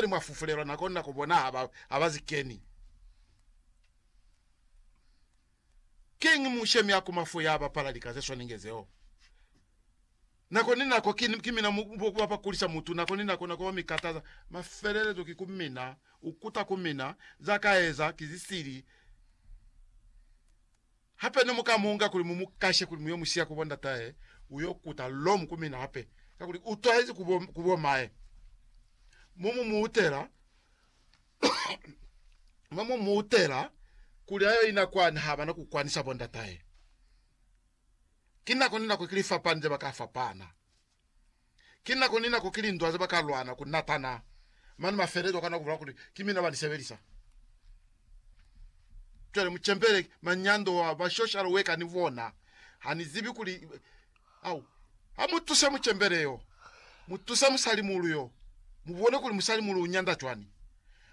Mwa mwa fufulelwa na kona ku bona ha ba, ha ba zi keni. Kiñi mushemi a kuma fo ya bapala lika ze swanenge zeo? Nako ni nako ki, ki mina mu, bo ba ba kulisa mutu, nako ni nako, nako ba mi kataza. Mafelelezo ki ku mina, u kuta ku mina, za ka eza, ki zisili. Hape ne mu ka mu nga kuli mu mu kashe kuli mu yo mu siya ku bo ndatahe, u yo kuta lomu ku mina hape, kakuli u twahezi ku bo, ku bo mahe. Mo mu mu utela, mo mu mu utela kuli ayo ina kwani ha bana ku kwanisa bo ndatahe. Ki nako ni nako ki lifapani ze ba ka fapana. Ki nako ni nako ki lindwa ze ba ka lwana ku natana, mane mafelelezo a kana ku bolela kuli ki mina ba ni sebelisa. Cwale mu cembele manyando a ba social worker ni bona. Ha ni zibi kuli, au, ha mu tuse mucembele yo, mu tuse musalimulu yo, mu bone kuli musalimulu u nyanda cwani.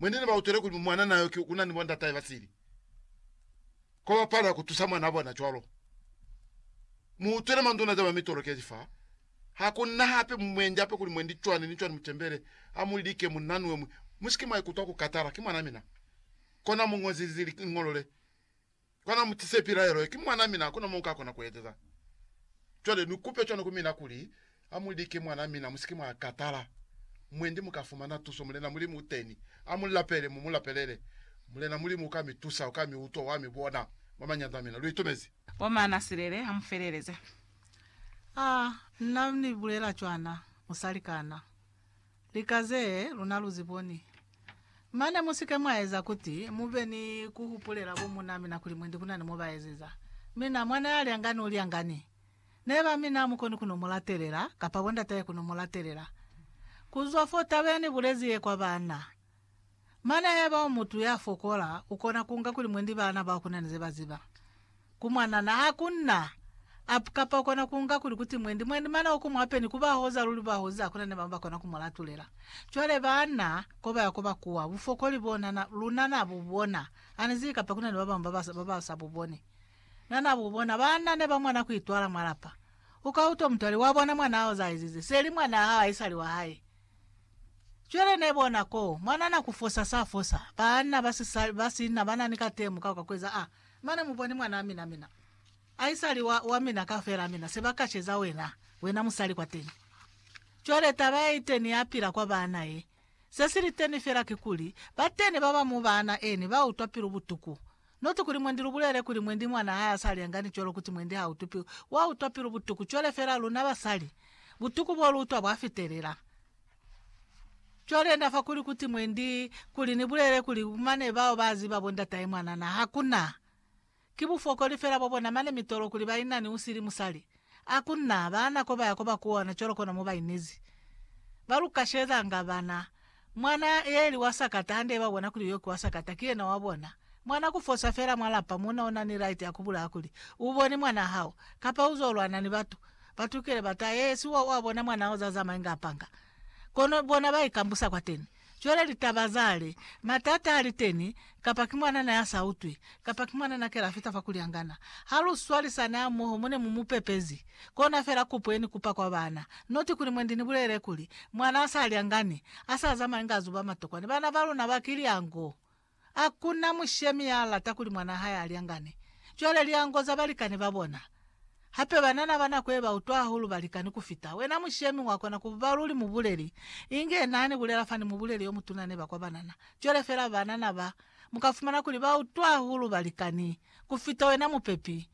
Mwene ne ba utwele kuli mwanana yo ki una ni bo ndatahe ba sili, kwa ba palelwa ku tusa mwanaa bona. Cwalo mu utwele manduna za ba mitolokeji fa. Ha ku na hape mu mwendi hape kuli mwendi cwani ni cwani mu tembele, ha mu like mu nanue mwi. Mu si ke mwa ikutwa ku katala. Ki mwanaa mina. Kona mu ñozi liñolo le, Kona mu tise pilaelo ye, ki mwana mina, hakuna mo nka kona ku ezeza. Cwale ni kupe cwani ku mina kuli, Amu like mwana mina, musike mwa katala. Mwendi muka fumana tuso, Mulena Mulimu uteni. Amu lapele, mu mu lapelele. Mulena Mulimu uka mi tusa, uka mi utwa, wa mi bona mwa manyanda amina. Lu itumezi? Bo Manasilele, ha mu feleleze. Ah, nna ni bulela cwana, musali kana. Lika ze luna lu zi boni. Mane mu si ke mwa eza kuti mu be ni ku hupulela bo muuna mina kuli mwendi ku na ni mo ba ezeza. Mina, mwana ya lyangani u lyangani. Neba mina ha mu koni ku no mu latelela, kapa bondatahe ku no mu latelela. Ku zwa fo taba ya ni bulezi ye kwa baana, Mane haiba u mutu ya fokola, u kona ku nga kuli mwendi bana bao ku na ni ze ba ziba. Ku mwanana, ha ku na up kapa u kona ku nga kuli kuti mwendi mwendi mane o ku mu apeni ku ba hoza luli ba hozi ha ku na ni bamwi ba kona ku mu latulela. Cwale bana ko ba ya ko ba kuwa, bufokoli bo na na, luna na bu bona. Ha ni zibi kapa ku na ni ba bamwi ba ba, ba ba sa bu boni. Na na bu bona. Bana ne ba mona ku itwala mwa lapa. U ka utwa mutu a li, Wa bona mwanaa hao za a ezize. Se li mwanaa hao, haisali wa hae. Cwale ne bona ko mwanana ku fosa sa fosa, baanna ba sisali ba sina ba na ni katemo ka kwa kueza a mane. Mu bone mwanaa mina, mina aisali wa, wa mina kafela, mina se ba kaceza wena, wena musali kwateni. Cwale taba ye iteni ya pila kwa baana ye, se si liteni fela kikuli, bateni ba ba mwa baana eni ba utwa pilu butuku. Not kuli mwendi lubulele kuli mwendi mwana hae asali yangani cwalo kuti mwendi ha utupi, wa utwa pilu butuku cwale fela luna basali, butuku bo lu utwa bwa fitelela. Cwale na fa kuli kuti mwendi kuli ni bulele kuli mane bao ba ziba bo ndatahe mwanana, hakuna. Ki bufokoli fela bo bona mane mitolo kuli ba inani usili musali. A ku na baana ko ba ya ko ba kuona cwalo kona mo ba inezi, ba lu kashelezanga bana. Mwana ye li wa sakata hande ba bona kuli yo ki wa sakata, ki yena wa bona. Mwana ku fosa fela mwa lapa mo na u na ni right ya ku bulaya kuli, U boni mwana hao, kapa u zo lwana ni batu. Batu kile ba ta, Ee, si wa, wa bona mwana hao za zamai nga panga. Kono bona ba ikambusa kwateni. Cwale litaba zale, matata a liteni, kapa ki mwanana ya sa utwi, kapa ki mwanana kela fita fa kulyangana. Ha lu swalisani hamoho mo ne mu mu pepezi, kona fela kupo ye ni kupa kwa bana, not kuli mwendi ni bulele kuli, mwana a sa lyangani, a sa zamani ka zuba matokwani, bana ba luna ba kilyango. Hakuna mushemi ya lata kuli mwanaa hae a lyangane. Cwale lyango za balikani ba bona. Hape banana ba nako ye ba utwa hahulu balikani ku fita. Wena mushemi wa kona ku ba luli mubuleli, inge na ni bulela fani mubuleli yo mutuna neba kwa banana. Cwale fela banana ba, mu ka fumana kuli ba utwa hahulu balikani. kufita wena mupepi,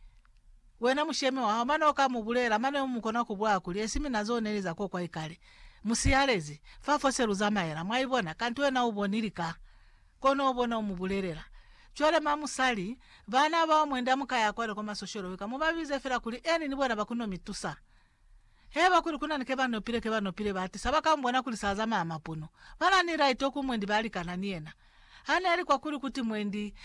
wena mushemi wahao, mane uka mu bulela, mane umu kona ku bwa kuli, Esi mina zo neli za kokwa ikale, mu siyalezi, fa fose lu zamaela. Mwaibona? Kanti wena u bonili ka. Kono u bona u mu bulelela. Cwale ma musali, bana bao mwenda muka ya kwale kwa masosholo wika, mu ba bize fela kuli, Annie ni bona ba ku no mi tusa. Heba kuli kuna ni ke ba nopile, ke ba nopile, ba atisa, ba ka mu bona kuli sa zamaya mapunu. Ba na ni laite oku mwendi ba likana ni yena. Ha ne li kwa kuli kuti mwendi,